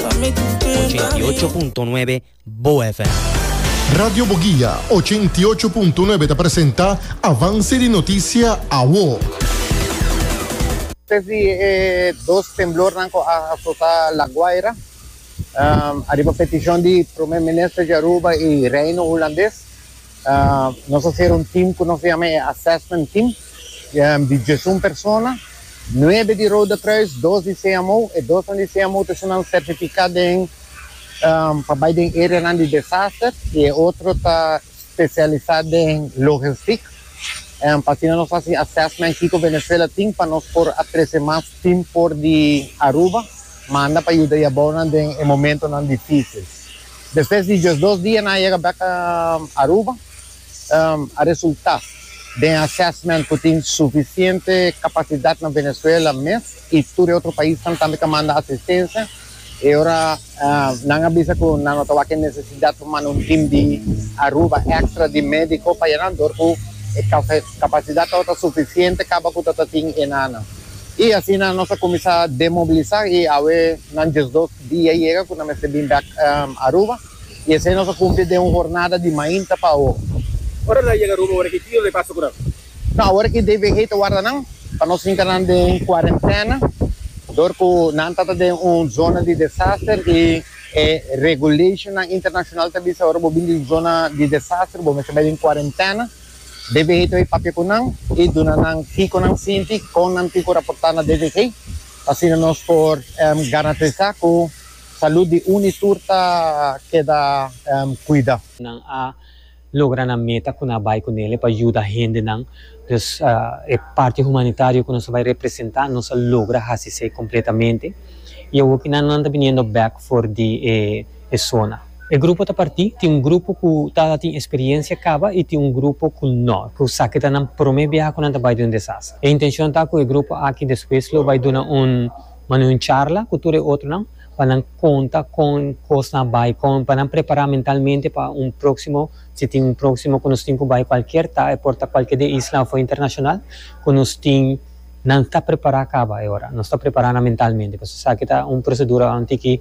88.9 Bo FM. Radio Boguia, ochenta i ocho punto nuebe ta presenta avance di noticia awo. Despues di e dos temblornan cu a azota La Guaira, ariba peticion di Primer Minister di Aruba y Reino Hulandes, Nos a ser un team cu nos a yama e assessment team di diesun persona, nuebe di Rode Kruis, dos di CMO, e dosnan di CMO ta shinanan certifica den pa bay den areanan di desaster y e otro ta specialisa den logistic. Asina nos haci assessment kico Venezuela tin pa nos por a trece mas team for di Aruba manda pa yuda yabounan den e momentonan dificil. Despues di diesdos dia nan a yega bek Aruba, a resulta den assessment cu tin suficiente capacidad na Venezuela mes y tur e otro paisnan tambe ta manda asistencia, e ora nan a bisa cu nan no ta wak e necesidad pa manda un team di Aruba extra di medico pa e nan dor cu e capacidad tabata suficiente caba cu ta tin enan. I asina nos a kuminsá demobilisá i awe nan diesdos dia yega ku nan mester bin bèk Aruba i esei nos a kumpli den un hornada di mainta pa awo. Ora nan yega Aruba ora ki dia lo e pasa ku nan? No, awor aki DVG ta warda nan pa nos hinka nan den kuarentèna dor ku nan ta ta den un zona di desaster i e regulationnan internashonal ta bisa ora bo bin di un zona di desaster bo mester bai den kuarentèna. DVG ta bai papia ku nan i duna nan kiko nan sinti, kon nan tin ku raportá na DVG pa asina nos por garantisá ku salú di uni i tur ta keda kuidá. Nan a logra nan meta ku nan a bai ku nele pa yuda hendenan. Dus e parti humanitario ku nos ta bai representá nos a logra hasi esei kompletamente. I awor ku nan ta biniendo bèk for di e. e sona. E grupo ta partí, tin un grupo ku ta tin eksperiencia kaba i tin un grupo ku no, ku sa ke ta nan promé biaha ku nan ta bai den un desastre. E intenshon ta ku e grupo aki despues lo bai duna un mane un charla ku tur e otronan pa nan konta kon kosnan a bai, kon pa nan prepará mentalmente pa un próksimo, si tin un próksimo ku nos tin ku bai kualkier ta, e por ta kualkier den isla òf internashonal, ku nos tin nan ta prepará kaba e ora, nos ta prepará nan mentalmente, pasobra esaki ta un prosedura un tiki.